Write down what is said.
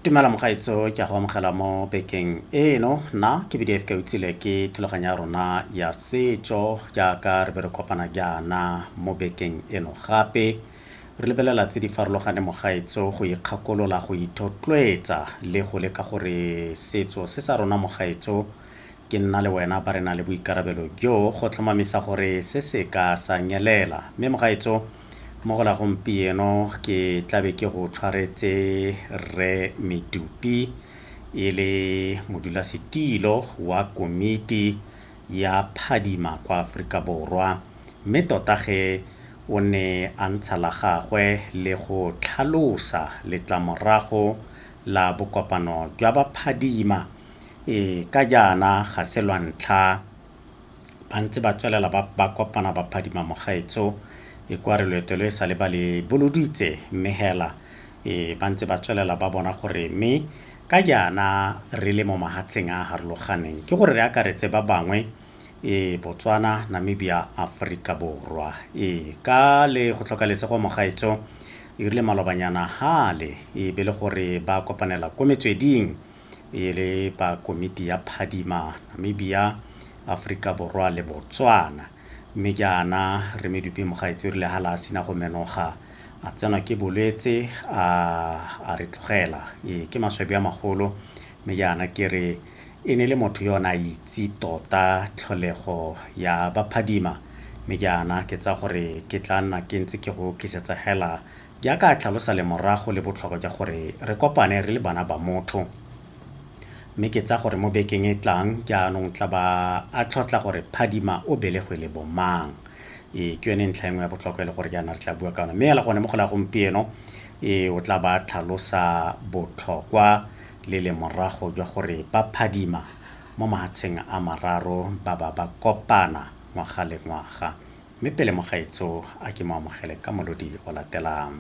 tumela mogaetso ke a go amogela mo bekeng eno nna ke bdf ka utsile ke thulaganyo ya rona ya setso jaaka re be re kopana jaana mo bekeng eno gape re lebelela tse di farologane mogaetso go ikgakolola go ithotloetsa le go leka gore setso se sa rona mogaetso Ke nna le wena ba re na le boikarabelo jo go tlhomamisa gore se se ka sa nyelela. Mme mogaetso, mo go la gompieno ke tla be ke go tshwaretse Rre Medupi e le modulasetilo wa komiti ya phadima kwa Aforika Borwa, mme tota ge o ne a ntsha la gagwe le go tlhalosa letlamorago la bokopano jwa baphadima, Ee, ka jaana ga se lwa ntlha ba ntse ba tswelela ba kopana ba phadima mogaetsho e kwa re loeto lo e sale ba le boloditse mme hela ee ba ntse ba tswelela ba bona gore mme ka jaana re le mo mahatsheng a a harologaneng ke gore re akaretse ba bangwe ee botswana namibia aforika borwa ee ka le go tlhoka lesego mogaetsho e rile malobanyana hale e be le gore ba kopanela ko metsweding e le ba komiti ya phadimana mme bia Afrika Borwa le Botswana mme jaana re medupi mogaetsi o rile ha la sina go menoga a tsenwa ke bolwetse a a re tlogela ee ke maswabi a magolo mme jaana ke re e ne le motho yo na itse tota tlholego ya baphadima mme jaana ke tsa gore ke tla nna ke ntse ke go tlisetsa hela Jaaka a tlhalosa lemorago le botlhokwa jwa gore re kopane re le bana ba motho. Mme ke tsaya gore mo bekeng e tlang jaanong tla ba a tlhotla gore Phadima o belegwe le bomang. Ee, ke yone ntlha e nngwe ya botlhokwa e le gore jaana re tla bua ka yone. Mme fela gone mo go la gompieno ee o tla ba a tlhalosa botlhokwa le lemorago jwa gore ba Phadima mo mahatsheng a mararo ba ba ba kopana ngwaga le ngwaga. mme pele mogaetsho a ke mo amogele ka molodi o latelang.